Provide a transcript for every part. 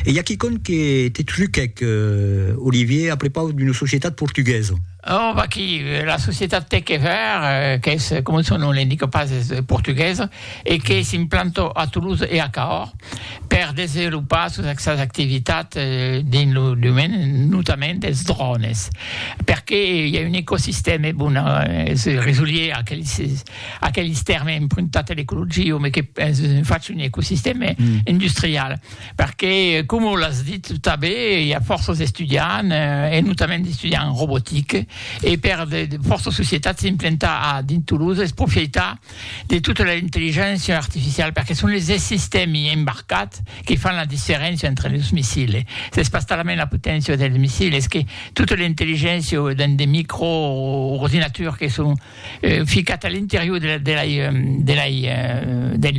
E i a quicòm que te truquèc, Olivier, a prepaus d'una societat portuguesa. Oh, vaquí, la societat Techever, qu'es, coma son nom l'indica pas, es portuguesa e que s'implanta a Toulouse e a Cahors per desenvolopar sos sas activitats dins lo domeni notament dels drònes, perqué i a un ecosistèma bon a se resolier a aqueles. Aqueles tèrmes empruntats a l'ecologia, me que faci un ecosistèma industrial, perque coma l'as dit tanben, i a fòrça d'estudiants, e notament d'estudiants en robotica, e per de fòrça societats s'implantar a dins Toulouse es profitar de tota l'intelligéncia artificiala, perque son es sistèmi embarcats que fan la diferéncia entre los missils. S'es pas talament la poténcia dels missils, es que tota l'intelligéncia dins de microordinaturs que son ficat a l'interior del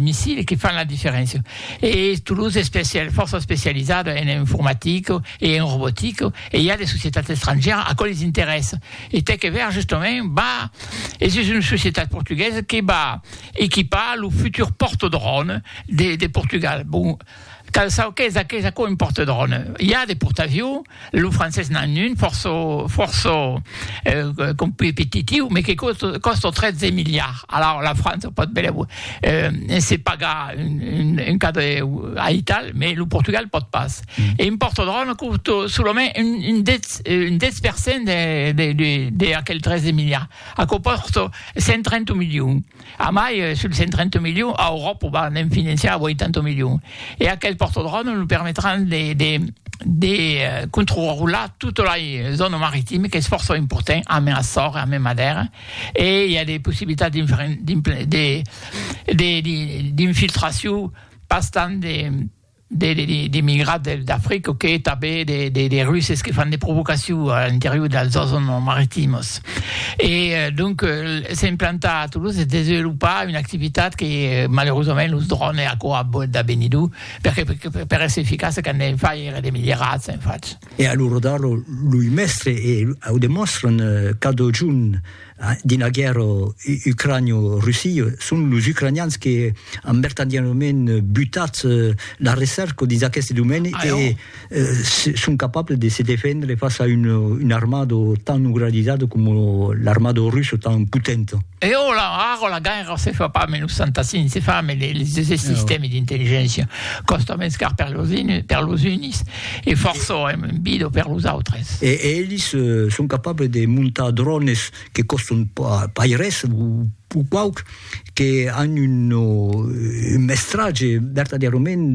missile que fan la diferéncia e tot los especial fòrça especializada en informatica e en robotica e i a de societats estrangièras aquò les interessa e tec e ver justament va e sus una societat portuguesa que va equipar lo futur portadròn de Portugal bon Cal çò qu'es aqueth aquò un porte-drone. I a de portaviu, lo francés n'an un fòrça fòrça competitiu, me que còsta 13 miliards. Alaur la França o pòt benlèu se pagar un cadre aital, me lo Portugal pòt pas. E un porte-drone còsta solament un 10 un 10 per cent de de de aquel 13 miliards. Aquò còsta 130 milions. Amai, sul 130 milions, a Euròpa va ne'n financiar 80 milions. E aquel portodròme lo permetràn de, de, de controrular tota la zòna maritima, qu'es fòrça important, amé Açor e amé Madèra, e i a de possibilitats d'infiltracion pas tant de, d'emigrats del d'Africa que tanben de russes que fan de provocacion a l'interior dels zòns maritimos e donc s'implantar a Toulouse e desvelopar una activitat que malerosament los drònes e aquò a bòt de benir d'o perque per èsser eficace qu'an de far èra de milierats en fach. E alura d'ara loi mèstre e au demòstran cada jorn Dins la guèrra ucranio-russia, son los ucranians que an vertadièrament butat la recerca dins aqueste domèni e son capables de se defendre fàcia a una armada tan organizada coma l'armada russa tan potenta. E ara, ara la guèrra se fa pas a 1965, se fa a 1965, se sistèmi d'intelligéncia còsta mens car per los unis, E fòrça èm un bido per los autres. E elis son capables de montar drònes que còstan pas res, o quauc, que an un mestratge vertadièrament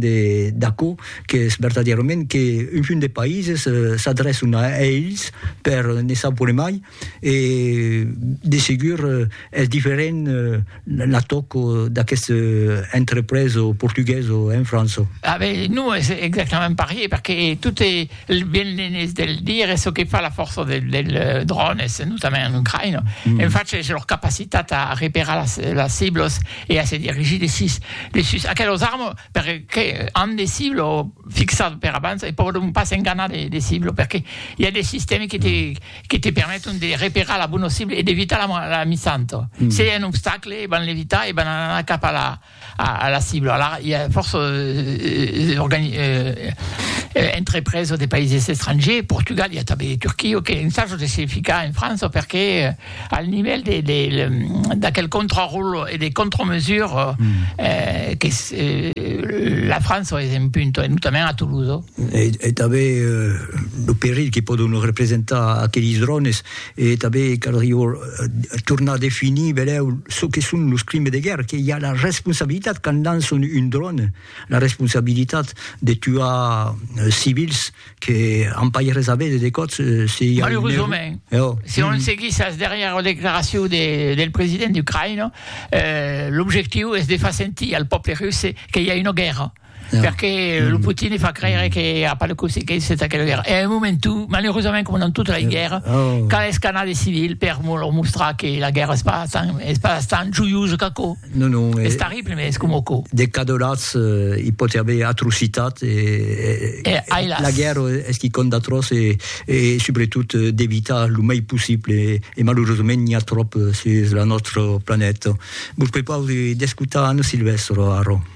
d'aquò qu'es vertadièrament qu'un munt de païses s'adrèçan a elis per ne savoir mai E de segur es diferent l'atoc d'aqueste entrepreso portugueso, hein Franço? Ah ben, non es exactament parier, perque tot e ben l'enés de le dire, es çò que fa la fòrça del dròn, es notament en Ucraïna, en fach es lor capacitat a reperar las las ciblos e a se dirigir de sus de sus aquelos armes, perque an de ciblo fixat per abans e pòdon pas s'enganar de de ciblo, perque i a de sistèmi que te que te permeton de reperar la bona cibla e d'evitar la la misanto. Mm. Se i a un obstacle, e van l'evitar e van anar cap a la, a, a la cibla. Alara, i a fòrça eh, eh, organi, eh, eh, entrepresa de païses estrangers, Portugal, i a tanben de Turquia, que un sajo de se ficar en França perque eh, al nivèl de, de, de, d'aquel contraròlo e de contramesura mm. eh, que eh, la França es en punto, e notament a Toulouse. e tanben lo perilh que pòdon representar aquelis drònes, e tanben caldrió tornar a definir benlèu çò que son los crimes de guèrra, qu'i a la responsabilitat quand lançon un dròn, la responsabilitat de tuar civils que an pas res a veire de còps se i a un error. Malerosament, si on seguís as darrièras declaracions del president ucraïnés, l'objectiu es de far sentir al pòble russe que i a una guèrra. Yeah. Perque mm. lo Putin e fa creire que a pas de consequences d'aquela guerra. E a un moment, tu, malerosament, com dans tota la yeah. guerra, oh. cal escanar de civil per leur mostrar que la guerra es pas tan, es pas tan joiosa qu'aco. Non, non. Es eh, terrible, mais es com aco. De cadolats, eh, hi pot haver atrocitat. E, e, e, e la guerra es qui compte d'atroç e, e sobretot eh, d'evitar lo mai possible. E, e malerosament, n'hi ha trop eh, sur la nostra planeta. Vos prepau d'escutar Anna Silvestre, Aro.